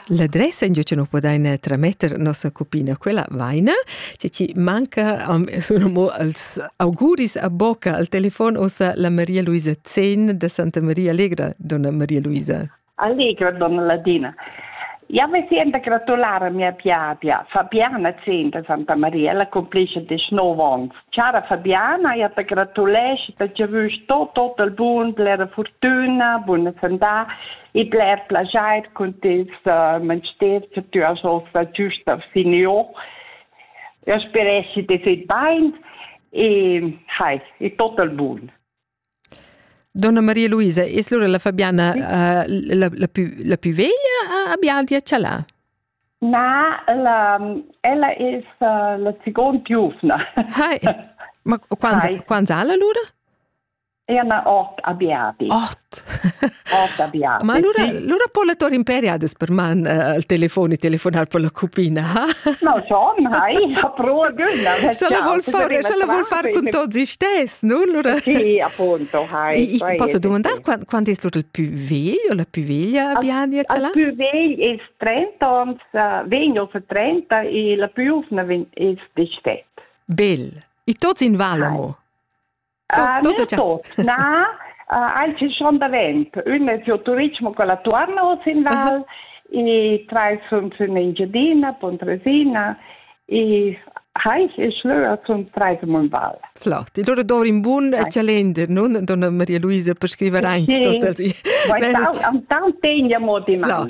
L'adressa in che nu podaina trametter nossa cupina, quella vaina, che ci manca am sun amo als auguris a bocca al telefon ossa la Maria Luisa Zen da Santa Maria Allegra, donna Maria Luisa. Allegra, donna Ladina. Ja me sento gratulare mia piapia, Fabiana Zen da Santa Maria, la complisce 19 ans. Chara Fabiana, ja te gratulesc per giavüsch tot total bun, blera furtüna, buna sandà e bler plajair cun tes uh, mensters che tü hast ossa giüsta finieu. Eu speresci de fet bain e hai, e total bun. Donna Maria Luisa, es lura la Fabiana uh, la, la, più, la più veglia a, a Bialdi a Cialà? Na, ella, ella es uh, la second giuvna. Hai, ma quants, quants ha la lura? Ena ot a Bialdi. Ot? Ma allura, allura po la tor imperi adas per man uh, al telefon e telefonar per la cupina, ha? No, schon, hai, ha pro gönna. Se la vuol far, se la vuol far con tots i stess, nu? Allura... Sì, appunto, hai. I posso domandare quando è stato il più vegl o la più veglia Biania ce l'ha? Il più vegl è 30 ans, vegno se 30 e la più giovane è 17. Bel. E tots in Valamo? Na, aici schon davent. Ün es giò Turitg, con la Tuorna sin val, i trais sun sün Engiadina, Pontresina, i Heich e Schlöer sun trais in val. Flott. E loro dor in bun calender, non, donna Maria Luisa, per scrivere anche sì. tot. Antan tegna mo di man.